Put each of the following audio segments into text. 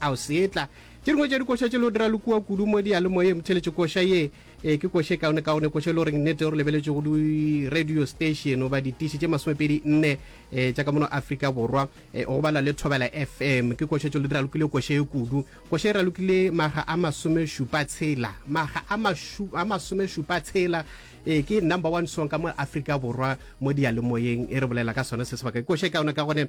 A o seetla? Tše dingwe tša dikoša tše le go dira le kua kudu mo diyalemoyeng theletše koša ye. Ee, ke koša e kaonekaone, koša e le goreng nnete go lebeletšwe go di-radio station goba ditiši tše masomepedi nne um tša ka mono Afrika Borwa, um go bala le Thobela FM. Ke koša tše le ralokile koša ye kudu. Koša e ralokile makga a masomešupa tshela. Makga a mašu, a masomešupa tshela. Ee, ke number one song ka mo Afrika Borwa mo diyalemoyeng e re bolela ka sona se sebaka. Ke koša e kaonekagone.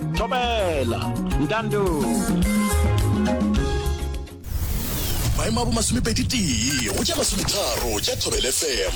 thobela ntando maemo a bo masomepedi tee go ja masometharo ja thobele fm